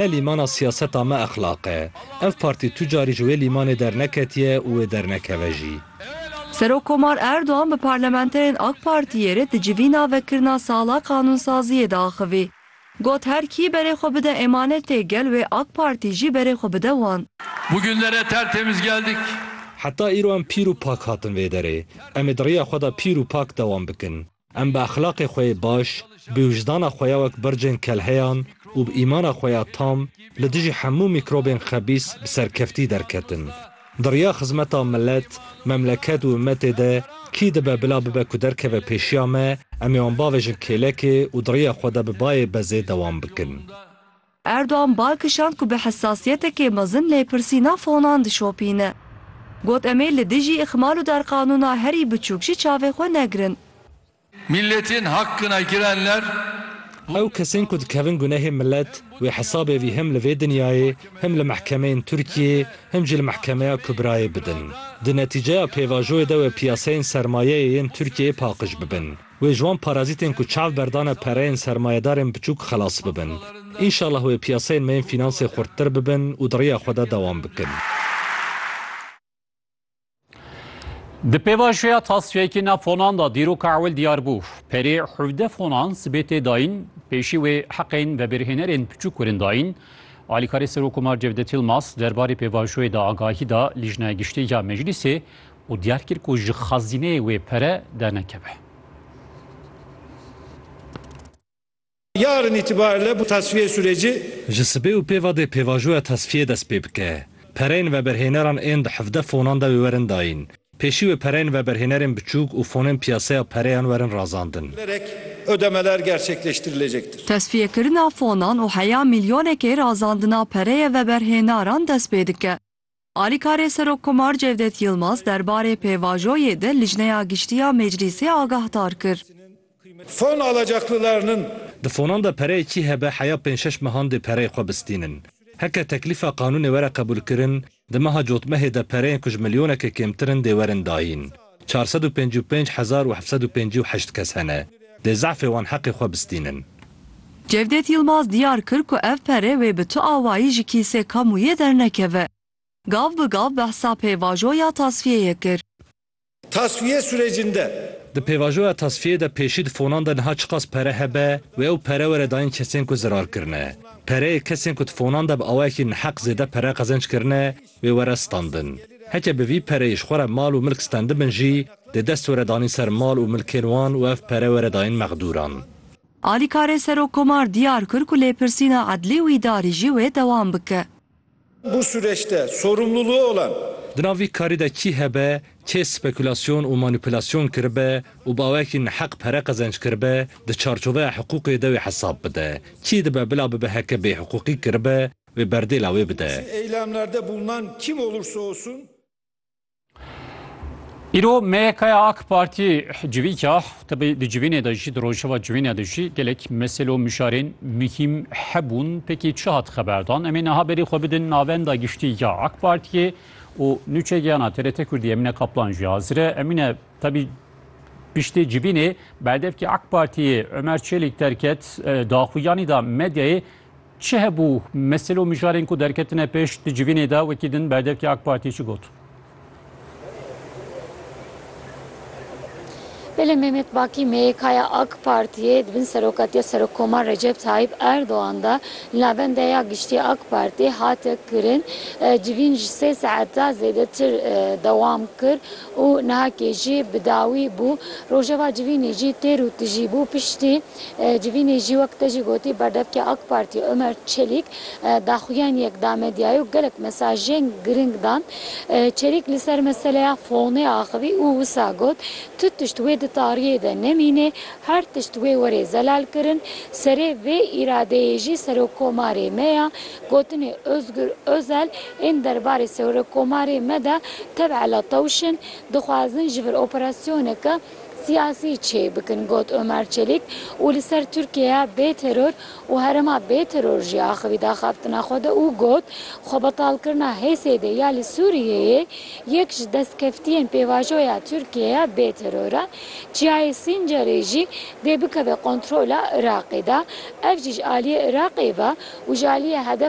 Ne lîmana siyaseta me exlaq e. Ev partî tu carî ji wê lîmanê derneketiye û wê dernekeve jî. Serokkomar Erdogan bi parlamenterên AK Partiyê re di civîna vekirina sala qanûnsaziyê de axivî. Got her kî berê xwe bide emanetê gel wê AK Partî jî berê xwe bide wan. Bu günlere tertemiz geldik. Heta îro em pîr û pak hatin vê derê. Em ê di rêya xwe de pîr û pak dewam bikin. Em bi exlaqê xwe yê baş, bi wijdana xwe ya wek bircên kelheyan û bi îmana xwe ya tam li dijî hemû mîkrobên xebîs bi serkeftî derketin. Di riya xizmeta milet, memleket û ummetê de kî dibe bila bibe ku derkeve pêşiya me, em ê wan bavêjin kêlekê û di riya xwe de bi bayê bezê dewam bikin. Erdogan bal kişand ku bi hesasiyetekê mezin lêpirsîna fonan dişopîne. Got em ê li dijî îxmal û derqanûna herî biçûk jî çavê xwe negirin. Milletên hakkına girenler. Ew kesên ku dikevin gunehê milet, wê hesabê vî hem li vê dinyayê, hem li mehkemeyên Tirkiyeyê, hem jî li Mehkemeya Kubrayê bidin. Di netîceya pêvajoyê de wê piyaseyên sermayeyê yên Tirkiyeyê paqij bibin. Wê ji wan parazîtên ku çav berdane pereyên sermayedarên biçûk xelas bibin. Înşallah wê piyaseyên me yên fînansê xurttir bibin û di riya xwe de dewam bikin. Di pêvajoya tasfiyekî nav fonan de dîroka ewil diyar bû. Perê hevdeh fonan sibê tê dayîn, pêşî wê heqên vebirhênerên piçûk kirin dayîn. Alîkarê Serokomar Cevdet Yilmaz derbarê pêvajoyê de agahî da Lîjnaya Giştî ya Meclîsê û diyar kir ku ji xazîneyê wê pere dernekeve. Yarın itibariyle bu tasfiye süreci. Ji sibê û pêva dê pêvajoya tasfiyê dest pê bike. Pereyên veberhêneran ên di hevdeh fonan de wê werin dayîn. Pêşî wê pereyên veberhênerên biçûk û fonên piyaseya pereyan werin razandin. Lerek ödemeler gerçekleştirilecektir. Tasfiyekirina fonan û heya milyonekê razandina pereyê veberhênaran dest pê dike. Alîkarê Serokkomar Cevdet Yilmaz derbarê pêvajoyê de Lijneya Giştî ya Meclîsê agahdar kir. Fon alacaklılarının. Di fonan de pereyê kî hebe heya pênc şeş mehan dê pereyê xwe bistînin. Heke teklîfa qanûnê were qebûlkirin, di meha cotmehê de pereyên ku ji milyonekê kêmtir in dê werin dayîn. çar sed û pênc û pênc hezar û heft sed û pêncî û heşt kes hene dê zehfê wan heqê xwe bistînin. Cevdet Yilmaz diyar kir ku ev pere wê bi tu awayî ji kîsê kamûyê dernekeve. Gav bi gav behsa pêvajo ya tasfiyeyê kir. Tasfiye surecinde. Di pêvajoya tasfiyê de pêşî di fonan de niha çiqas pere hebe wê ew pere were dayîn kesên ku zirar kirine. Pereyê kesên ku di fonan de bi awayekî neheq zêde pere qezenc kirine, wê were standin. Heke bi vî pereyê ji xwe re mal û milk stendibin jî, dê dest were danîn ser mal û milkên wan û ev pere were dayîn mexdûran. Alîkarê Serokkomar diyar kir ku lêpirsîna edlî û îdarî jî wê dewam bike. Bu sureçte sorumluluğu olan. Di nav vî karî de kî hebe, kê spekülasyon û manîpülasyon kiribe û bi awayekî neheq pere qezenç kiribe, di çarçoveya hiqûqê de wê hesab bide. Kî dibe bila bibe heke bêhiqûqî kiribe, Wê berdê la wê bide. Çi eylemlerde bulunan kim olursa olsun. Îro MYKya AK Partî civîka tibî di civînê de jî di rojeva civînê de jî gelek mesele û mişarên muhîm hebûn pekî çi hat xeberdan em ê niha berî xwe bidin navenda giştî ya AK Partiyê û nûçegiyana TRT Kurdî Emîne Kaplan jî hazir e Emîne tibî piştê civînê berdevkî AK Partiyê Ömer Çelîk derket daxuyanî da medyayê Çi hebû? Mesil û mijarên ku derketine pêş di civînê de wekî din berdevkî AK Partiyê çi got? Belê Mehmet Bakî MYKya AK Partiyê di bin serokatiya Serokkomar Recep Tayyîp Erdogan de li Navendeya Giştî AK Partiyê hate kirin. Civîn ji sê saeta zêdetir dewam kir û nihakê jî bi dawî bû. Rojeva civînê jî têr û tijî bû piştî. Civînê jî wek te jî gotî berdevkê AK Partî Omer Çelîk daxuyaniyek da medyayê û gelek mesajên giring dan. Çelîk li ser meseleya fonê axivî û wisa got, Tu tişt wê di tariyê de nemînê, her tişt wê werê zelalkirin. Serê vê îradeyê jî Serokomarê me ya. Gotinê Ozgur Ozel ên derbarê Serokomarê me de tevela tewş in. Dixwazin ji vir operasyoneke. Siyasî çê bikin, got Omer Çelîk û li ser Tirkiyeya bê teror û herêma bê teror jî axivî da xebtina xwe de û got, Xwebetalkirina HSD'ê ya li Sûriyeyê yek ji destkeftiyên pêvajoya Tirkiyeya bê teror e. Çiyayê Sîncerê jî dê bikeve kontrola Iraqê de. Ev jî ji aliyê Iraqê ve û ji aliyê Hedef